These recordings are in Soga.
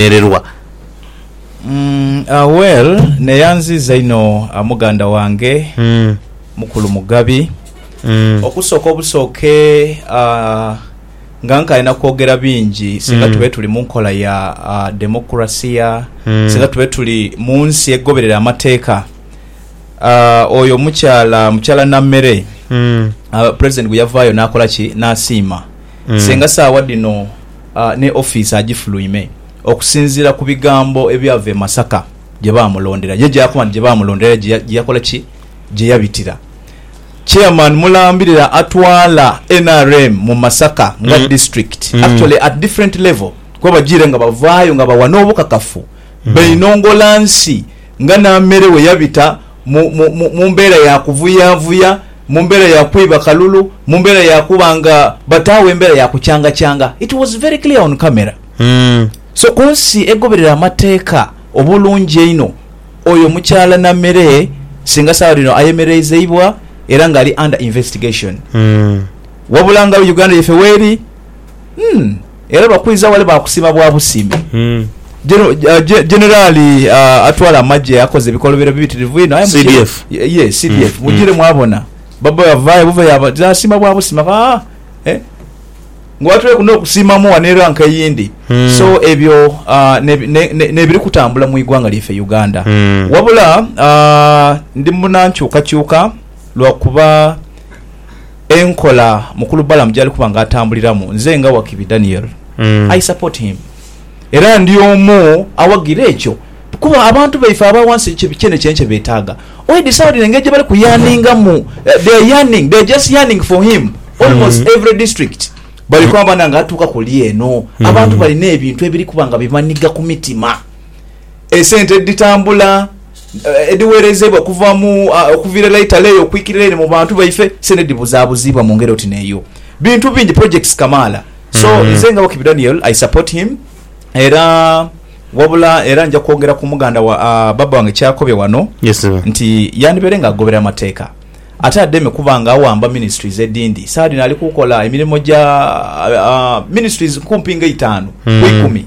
okulemererwa. Umm well neyanziiza inho muganda wange mukulu Mugabi. Okusooka obusooke nga nkaali nakwogera bingi singa tube tuli munkola ya democracia singa tube tuli munsi egoberera amateeka oyo omukyala mukyala Nammere president bweyavaayo nakola ki nasiima senga saawa dhino ne ofiisi agifuluime okusinziira ku bigambo ebyava e Masaka gye baamulondera. Ye gy'akoba nti gye baamulondera aye gye yakola ki? Gye yabitira. Chairman mulambirira atwala nrm mu Masaka nga district actually at different level kuba bajiire nga bavaayo nga bawa n'obukakafu beinongola nsi nga Nameere we yabita mu, mu, mu, mu mbeera ya kuvuyavuya, mu mbeera ya kwiba kalulu, mu mbeera ya kuba nga bataagho embeera ya kukyangakyanga. It was very clear on camera. So ku nsi egoberera amateeka obulungi einho, oyo mukyaala Namere singa saagha dhino ayemereizeibwa era nga ali under investigation. Wabula nga Uganda yaife weeri, Hmm. Era bakwidha wale baakusiima bwa busiimi. Generali hmm. uh, uh, atwala amagye akoze ebikolobero bibitirivu inho aye CDF. Ye, CDF. Hmm. Mugire mwabona. Baba yavaye buva yaba asiima bwa busiima. Ah, eh. Ngwatule kuno okusiima mu wano era nkayindi. Hmm. So ebyo uh, ne, ne, ne, ne biri kutambula mu igwanga lyaffe Uganda. Hmm. Wabula uh, ndi munankyuka kyuka lwakuba Enkola Mukulu Balaam gyali kuba nga atambuliramu, nze nga Wakibi Daniel, I support him. Era ndi omu awagira ekyo kuba abantu baife aba wansi kyene kye kyebetaaga. Oi decided engeri gyebali ku yearningamu, they are yearning, they are just yearning for him. Almost every district bali kwamba na nga atuuka kuli eno. Abantu balina ebintu ebiri kuba nga bibaniga ku mitima. Esente editambula. edhiweerezeibwa okuva mu, okuviira ela eitale eyo okwikirira ere mu bantu baife, se nedhibuzaabuzibwa mu ngeri oti n'eyo. Bintu bingi, projects kamaala. So, nze nga Wakibi Daniel, I support him era wabula era nja kwogera ku muganda wa, baaba wange ky'akobye wano nti yandibaire nga agobera amateeka ate ademe kuba nga awamba ministries edhindi. Saagha dhino ali kukola emirimo gya, ministries kumpi nga eitaanu ku ikumi.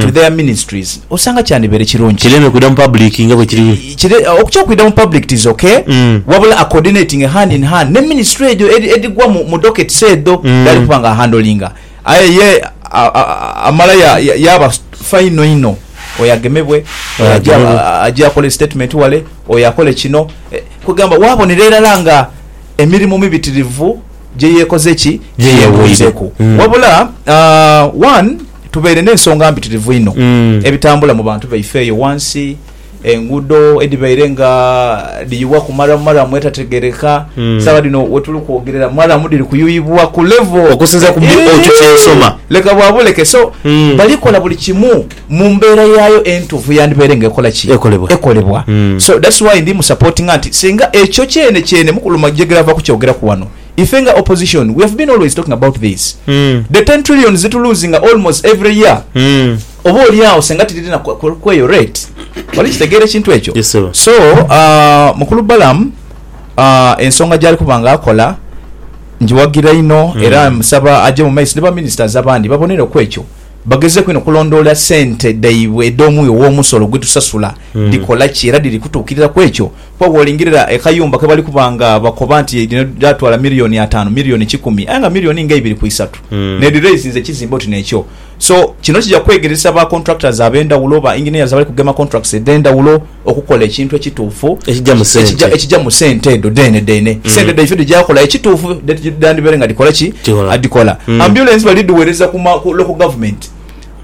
through their ministries osanga kyandibaire kirungi Kireme kwidha mu public nga bwe kiri. i, kire, okutya okwidha mu public tis ok, wabula acoordinatinge hand in hand ne ministry egyo edhi, edhigwa mu, mu dockets edho dhaali kuba nga ahandlinga. Aye ye a, a, amala ya, ya, yaaba fa inho inho, oyo agemebwe, oyo Oyo aje, agemebwe. a, aje akole statement wale, oyo akole kino, eh, kwegamba waabonera irala nga emirimu mibitirivu gye yeekoze ki, gye Gye yeewoire. yeewoireku. Mm. Wabula, a, one. Tubaire n'ensonga mpitirivu inho ebitambula mu bantu baife eyo ghansi, enguudo edhibaire nga dhiyuwa ku maramu maramu etategeereka. Saagha dhino we tuli kwogerera maramu dhiri kuyuyibwa ku levo. Okusinzira ku byo otu kye nsoma. Leka bwa buleke. So, bali kola buli kimu mu mbeera yaayo entuufu yandibaire nga ekola ki? Ekolebwa. So, that's why ndi mu supportinga nti singa ekyo kyene kyene Mukulu Majegere ava kukyogeraku ghano, Ife nga opposition we have been always talking about this the ten trillions dhetu loosinga almost every year oba olyagho senga tidhiri na kweyo rate wali kitegeera ekintu ekyo so mukulu Balaam ensonga gyali kuba nga akola ngiwagira inho era musaba aje mu maiso ni ba ministers abandi babonere ku ekyo bagezeeku inho okulondoola sente dhaibwe edh'omuwi ow'omusolo gwetusasula dhikola ki era dhiri kutuukirira ku ekyo. Kuba bw'olingirira ekayumba ke bali kuba nga bakoba nti lino lyatwala milioni ataanu, milioni kikumi aye nga milioni nga ibiri ku isatu n'edhiraizinze ekizimbe oti n'ekyo. So, kino kija kwegeresa ba contractors ab'endhawulo, ba engineers abali kugema contracts edh'endhawulo okukola ekintu ekituufu Ekija mu sente. ekija mu sente edho dheenedheene. Sente dhaifo dhija kukola ekituufu dhedhandibaire nga dhikola ki? Kikola. Dhikola. Ambulance bali kudhiweereza ku ma ku local government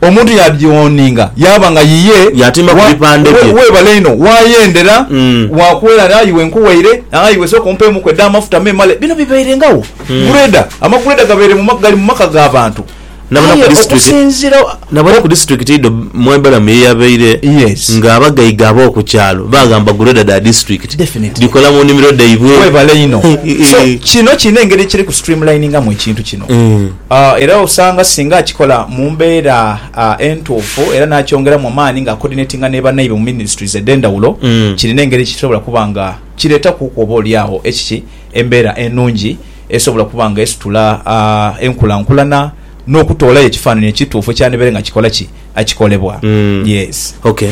Omuntu yaadhioninga yaaba nga yiye Yaatimba ku wa, bipande we, bye. weebale inho waayendera, Mm. waakuwera ati, Ayi iwe nkuwaire, ayi iwe sooka ompeemuku edh'amafuta meemale. Bino bibairengawo. Gureda, amagureda gabaire mu ma, gali mu maka ga bantu. Nabona ku Aye district- okusinziira, Nabona ku disitulikiti idho Mwebalamu ye yabaire Yes. nga abagaiga ab'oku kyalo baghamba gureda dha disitulikiti Definitely. dhikola mu nnhimiro dhaibwe. Weebale inho. So, kino kirina engeri ekiri ku streamliningamu ekintu kino. Mm. Era osanga singa akikola mu mbeera entuufu era n'akyongeramu amaani nga akoodinetinga ni bannaibe mu minisiturizi edh'endhawulo, kirina engeri gye kisobola kuba nga kireetakuku oba olyagho ekiki embeera enungi esobola okuba nga esitula enkulankulana n'okutoolayo ekifaananyi ekituufu ekyandibaire nga kikola ki? Kikolebwa. Yes. Ok.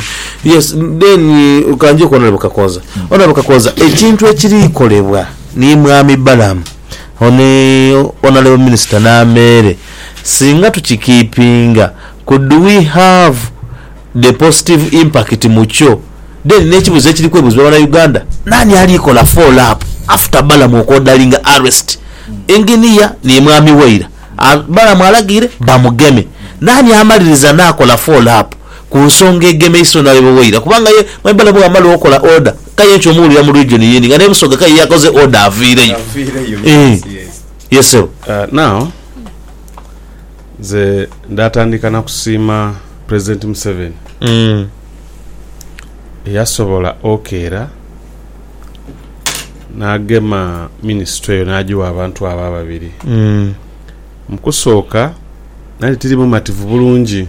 Yes. Then ka nje ku Honourable Kakonza. Honourable Kakonza, ekintu ekiri kolebwa ni Mwami Balaam, Ono ni Honourable Minister Nameere, Singa tukikiipinga, could we have the positive impact mu kyo? Then n'ekibuuzo ekiri kwebuuzibwa banauganda, naani ali kola follow up after Balamu okwoodalinga arrest Engineer ni Mwami Waira? Balamu alagiire bamugeme, naani amaliriza n'akola follow up ku nsonga egemeisa Honourable Waira? Kubanga ye Mwami Balamu bwamala okola order, Kaye nkyo omuwulira mu region yeni nga ne Busoga kaye yakoze order aviireyo eeh yes sebo. Now nze ndatandika nakusiima president museveni eyasobola okeera nagema ministry eyo najiwa abantu abo ababiri mukusooka nali tiri mumativu bulungi.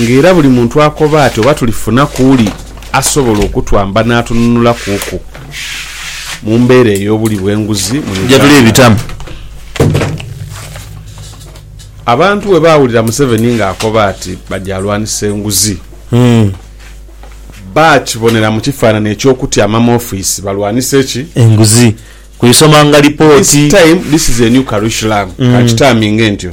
nga era buli muntu akoba ati oba tulifuna ku uli asobola okutwamba n'atununulakuku mu mbeera ey'obuli bw'enguzi mu Uganda. Abantu bwe baawulira Museveni ng'akoba ati baja alwanisa enguzi, baakibonera mu kifaananyi eky'okutyama mu ofiisi balwanise ki? Enguzi. Ku isomanga lipooti. This time, this is a new curriculum, ka nkitaminge ntyo.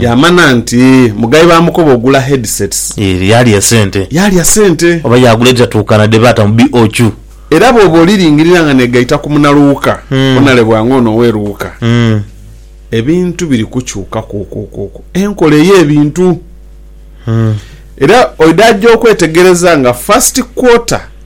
Yaamana nti mugayi baamukoba ogula headsets. Eeh, yaalya sente. Yaalya sente. Oba yaagula edhitatuukana dhe baata mu BOQ. Era bwooba oliringirira nga neegaita ku munaluuka onalebwa nga ono owe luuka. Ebintu biri kukyuka kwokwokwo enkola ey'ebintu. Era oidha aja okwetegereza nga first quarter.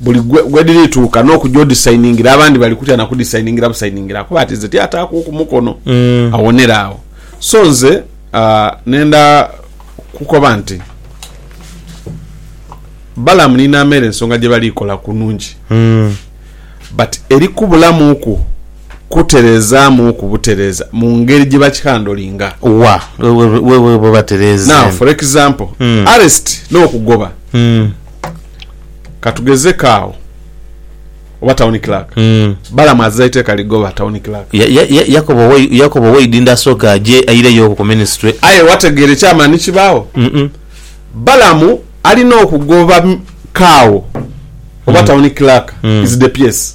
buli ghedhirituuka n'okuja odhisayiningira abandi bali kutya na kudhisayiningira busayiningira kuba ati nze tiataakuuku mukono mm. awonera awo so nze uh, nenda kukoba nti balamu ni nameere ensonga gye bali kola ku nungi mm. but eri kubulamuuku kutereezaamuuku butereeza mu ngeri gye bakikandolinga wa wewe batereeza now for example mm. arrest n'okugoba mm. katugezeko agho oba town clerk mm. balamu aziza iteeka ligoba town clerk ya, ya, ya, yakobo yakobo oweidinda asooke aje aireyo okwo ku ministry aye wategeera ekyamaani kibaagho mm -mm. balamu alina okugoba kaawo oba mm. town clerk mm. is the piece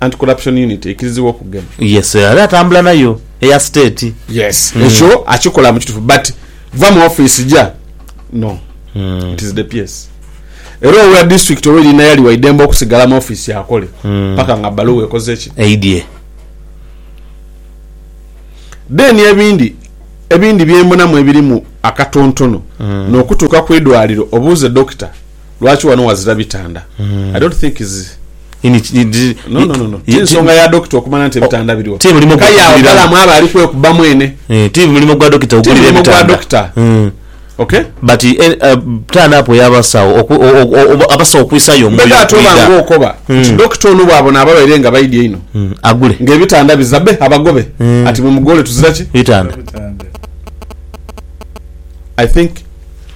Anti Corruption Unit eikiriziibwa okugema. Yes era atambula nayo eya state. Yes ekyo akikola mukitufu but va mu office ja no it is the PS era owa district oba erina yali waidembe okusigala mu office akole paka nga baluwa ekoze ki? Eidye. Then ebindi ebindi byembonamu ebirimu akatontono nokutuuka kwidwaliro obuuze doctor. lwaki wano wazira bitanda hmm. i don't think is no no no tinsonga ya dokita okumanya nti ebitanda biriwo ti mulimu gwa dokita mwa bali kwe kuba mwene eh, ti mulimu gwa dokita ogulira ebitanda hmm. okay but eh, eh, turn up ya basawo abasawo kwisayo omwe ya tuba ngo okoba hmm. dokita ono bwabo na baba irenga baidi ino agule nge bitanda bizabe abagobe ati mu mugole tuzira ki bitanda i think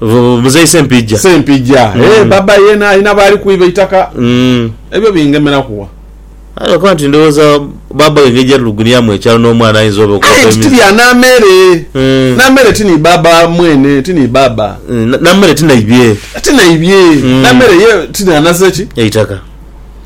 Muzei Sempijja. Sempijja. Eeh baba yena alina baali kwiba eitaka. Ebyo bingemeraku wa? Aye lwakuba nti ndowooza baba we engeri gyatulugunyamu ekyalo n'omwana ayinza oba okuba Aye nti ti bya Namere. Namere ti ni baba mwene, ti ni baba. Namere ti naibye. Ti naibye. Namere ye ti n'anaze ki? Eitaka.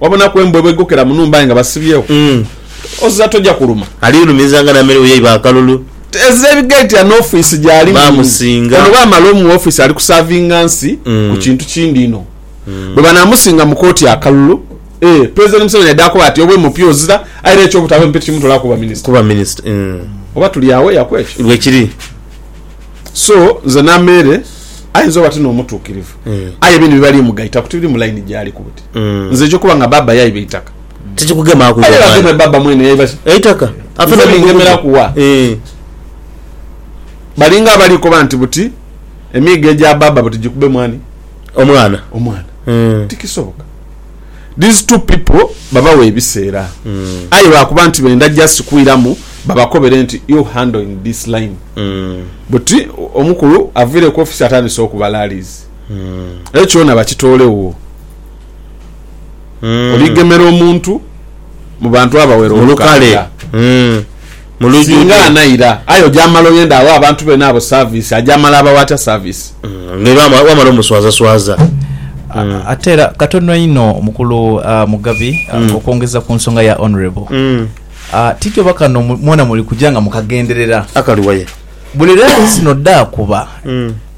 Wabonaku embwa bw'eigokera mu nhumba aye nga basibyegho, oziza toja kuluma. Aliilumiza nga na mere yaiba akalulu. Teeza ebigaiti ano ofiisi gy'ali mu. Baamusinga. Ono bwamala omuwa ofiisi ali kusaavinga nsi ku kintu kindi inho. Bwe banaamusinga mu kooti akalulu, ee, Pulezidenti Museveni aidha koba ati, obe mupi ozira, aye era eky'obutaabe mupi tikimutolaku kuba minisita. Kuba minisita. Oba tuli agho ya ku ekyo? Bwekiri. So, nze na mere, ayinza oba ti n'omutuukirivu, aye bino bibali mugaita ku tibiri mu layini gy'aliku. Mm. Nze ejo kuba nga baba yaiba eitaka. Tikikugema ku Aye bageme mwana. baba mwene yaiba ki? Eitaka. Afe Nze no mugugu. bingemeraku wa? Eeh. Balinga abali koba nti buti emiigo egya baba buti gikube mwani? Omwana. Omwana. Mm. Tikisoboka. These two people babawe ebiseera. Aye lwakuba nti benda just kwiramu babakobere nti you handle in this line. Mm. Buti omukulu avire ku office atandise okubala lease. Ekyo kyona bakitoolewoo. Oligemera omuntu mu bantu abawera Mu lukale. olukaaga. Mm. Mu Singa lujudho. anaira, aye oja mala oyende aghe abantu beene abo service, aja mala abawe atya service? Nga wama- wamala omuswazaswaza. Mm. Ate era katono inho mukulu ah, Mugabi ah, Mm. okwongeza ku nsonga ya Honourable. Mm. Ah, tityoba kano mu- mwona muli kuja nga mukagenderera. Akali waya. Buli lensino dhaakuba, Mm.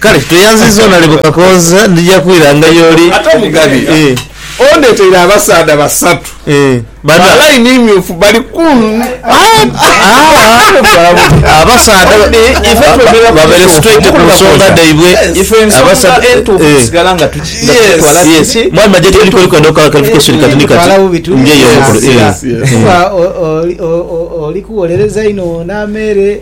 Kale tweyanziza onalebo Kakooza ndija kwiranga y'oli. Ate Omugabi ondeeteire abasaadha basatu ba line myufu bali kunhumba.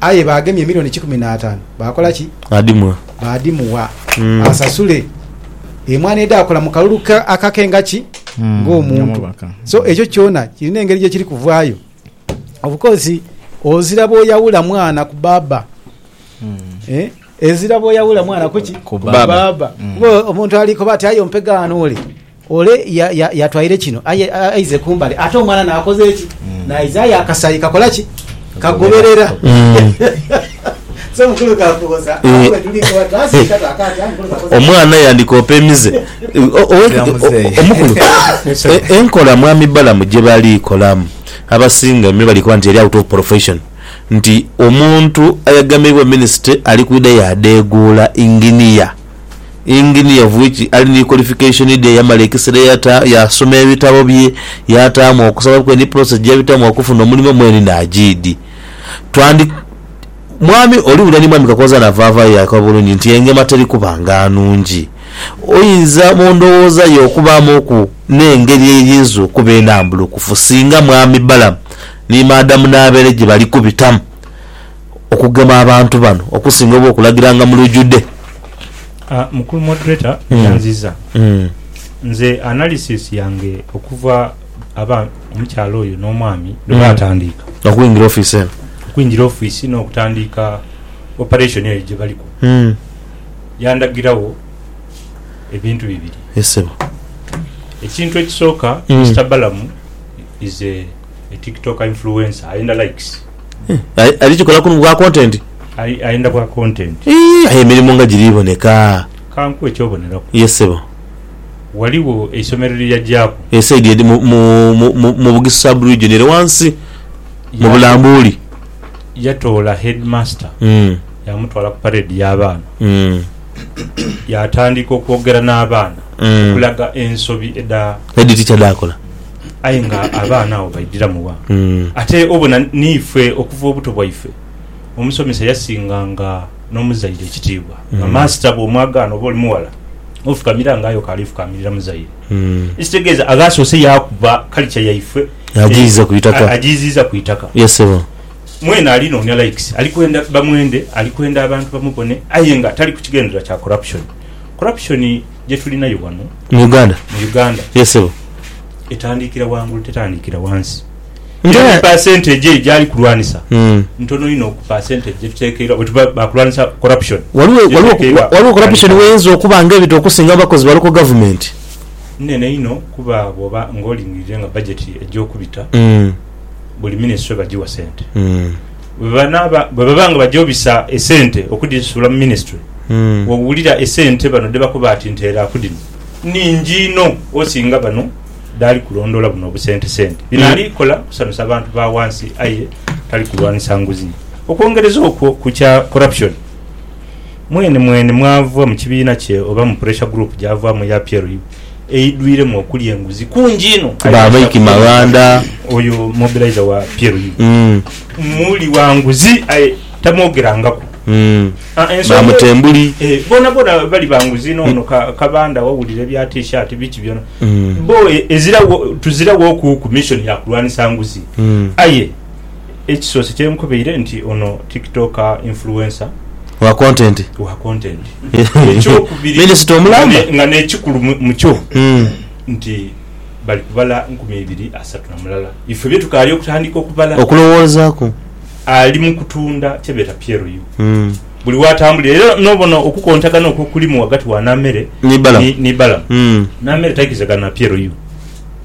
Aye baagemya emilioni kikumi n'ataanu, baakola ki? Baadhimuwa asasule emwaana edhaakola mu kalulu ke akake nga ki? Ng'omuntu. So, ekyo kyona kirina engeri gye kiri kuvaayo. Of course, ozira bw'oyawula mwana ku baaba. Ezira bw'oyawula mwana ku ki? Ku baaba. Kuba omuntu ali koba ati aye ompegaano ole. Ole y'atwaire kino aize kumbali, ate omwana n'akoze ki? N'aiza aye akasayi kakola ki? Kagoberera. Omwana yandikoopa emize. Omukulu, enkola Mwami Balamu gye bali kolamu abasinga me bali koba nti eri out of profession, nti omuntu ayagameibwa minisitule ali kwidha yaadheeguula inginiya. Engineer of which ali ni qualification dhe yamala ekisera eyata yasoma ebitabo bye yatamu okusaba kwe ni process jeyabitamu okufuna omulimo mwene najiidi twandi mwami oli wulira ni mwami Kakooza navavayo yakoba bulungi nti engema teri kuba nga nungi oyinza mu ndowooza yo okubamu ku ne ngeri eyinza okuba enambulukufu singa mwami Balamu ni madam Nabeere jebali kubitamu okugema abantu bano okusinga oba okulagiranga mu lujude. Aah mukulu moderator nyanziza nze analysis yange okuva aba omukyala oyo no mwami lwe batandiika okwingira office eno okwingira office no kutandiika operation eyo gye baliku yandagirawo ebintu bibiri ekintu ekisooka Mister Balamu is a tiktoker influencer ayenda likes. Aye ali kikola ku bwa content? Aye ayenda bwa content. Ii, aye emirimo nga giri boneka. Kankuwe ekyoboneraku. Yes sebo. Waliwo eisomero lye yagyaku. E side eri mu, mu, mu, mu Bugisu sub region ere wansi mu Bulambuli. Yatoola headmaster yamutwala ku parade ya baana yatandika okwogera na baana okulaga ensobi edha. Head teacher dhakola. Aye nga abaana agho baidhiramu wa? Ate obona n'ife okuva obuto bwaife omusomesa yasinganga n'omuzaire ekitiibwa. Nga maasita bw'omwagaana oba oli mughala, ofukamira nga aye okaali ofukamirira muzaire. Ekitegeeza aghaasoose yaakuba kalica yaife agiiziiza ku itaka. Mwene ali noonia likes, ali kwenda bamwende, ali kwenda abantu bamubone aye nga tali ku kigendererwa kya corruption. Corruption. gye tulinayo wano mu Uganda, mu Uganda yes sebo, etandikira wangulu tetandikira wansi era ni percentage eyo gyali kulwanisa mm. ntono inho ku percentage gye tutekeirwa bwe tuba bakulwanisa corruption. Waliwo waliwo waliwo corruption weyinza okuba nga ebita okusinga mu bakozi baliko government. Nnene inho kuba bwoba nga olingiririre nga budget egyokubita mm. buli ministry bagiwa sente mm. Bwe baba nga baja obisa esente okudhisuula mu minisitule, wowulira esente bano dhe bakoba ati nteera ku dhino nnhingi inho osinga bano dhaali kulondoola buno obusentesente. Bino ali kola kusanusa bantu ba wansi aye tali kulwanisa nguzi. Okwongereza okwo ku kya corruption. Mwenimweni mwava mu kibiina kye oba mu pressure group gyavaamu eya peer review eidhwiremu okulya enguzi kungi inho. Ba Mike Maghanda. Oyo mobiliser wa peer review muli wa nguzi aye tamwogerangaku. Ba Mutembuli. Boonaboona bali ba nguzi. N'ono Kabanda wawulira ebya T-shirt biki byona. Bo tuziraghoku ku mission ya kulwanisa nguzi aye Ekisoose kye nkubaire nti ono TikTok influencer. Wa content. Wa content. Ekyokubiri nga n'ekikulu mu kyo nti bali kubala nkumi ibiri asatu na mulala. Ife bye tukaali okutandika okubala. Okulowoozaaku. Ali mu kutunda kye beeta PLU. Buli w'atambulira era n'obona okukontagana okwo okulimu ghagati wa Naamere ni Balamu. Naamere taikiriza gana na PLU.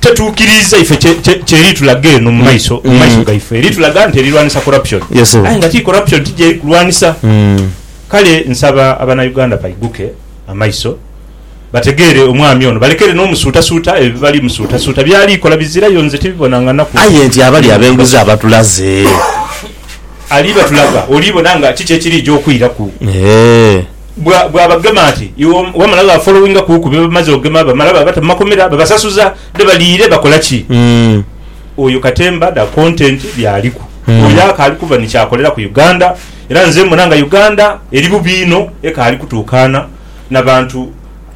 tetuukiriiza ife kye, kye, kye eritulaga eno mu mm. maiso, mu maiso mm. gaife, eritulaga nti erirwanisa corruption, aye nga ti corruption ti gyeri kulwanisa. Mm. Kale nsaba abanauganda baiguke amaiso bategeere omwami ono balekere n'omusuutasuuta ebyo bibali musuutasuuta byali kola bizirayo nze tibibona nga naku aye nti abali abenguzi abatulaze ali batulaga olibona nga kiki ekiri gyokwiraku eh. bwa bwabagema ati iwe wamala wa followinga kuku byebamaze ogema bamala babata mumakomera babasasuza dhe baliire bakola ki oyo katemba da content byaliku oyo akaali kuva ni kyakolera ku Uganda era nze mbona nga Uganda eri bubi inho ekaali kutuukaana nabantu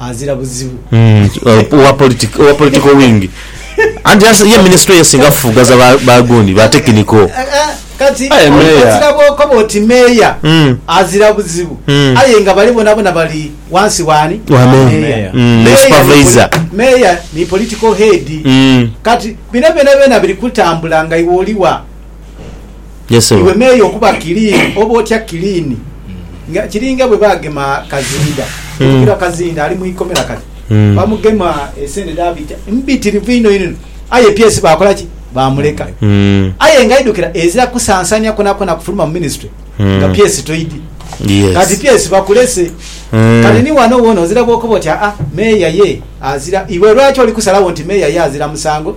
azira buzibu. Owa political wing anti ye minisitule ye esinga kufufugaza ba gundi, ba tekiniko. Kati ozira bwokoba oti meeya azira buzibu aye nga bali bonabona bali wansi wani? Wa meeya. Meeya ni political head. Kati bino byonabyona biri kutambula nga iwe oli wa? Iwe meeya okuba kiliini, oba otya kiliini. Nga kiringa bwe baagema Kazinda, Mukira Kazinda ali mu ikomera kati. Bamugema esente dhaabita mbitirivu inho inho, aye PS baakola ki? Baamuleka. Aye nga idhukira, ezira kusansanya kwonakwoona kufuluma mu minisitule nga PS toidhi. Kati PS bakulese. Kati ni wano woona ozira bw'okoba oti, Aa, meeya ye azira. Iwe lwaki oli kusalagho nti meeya ye azira musango?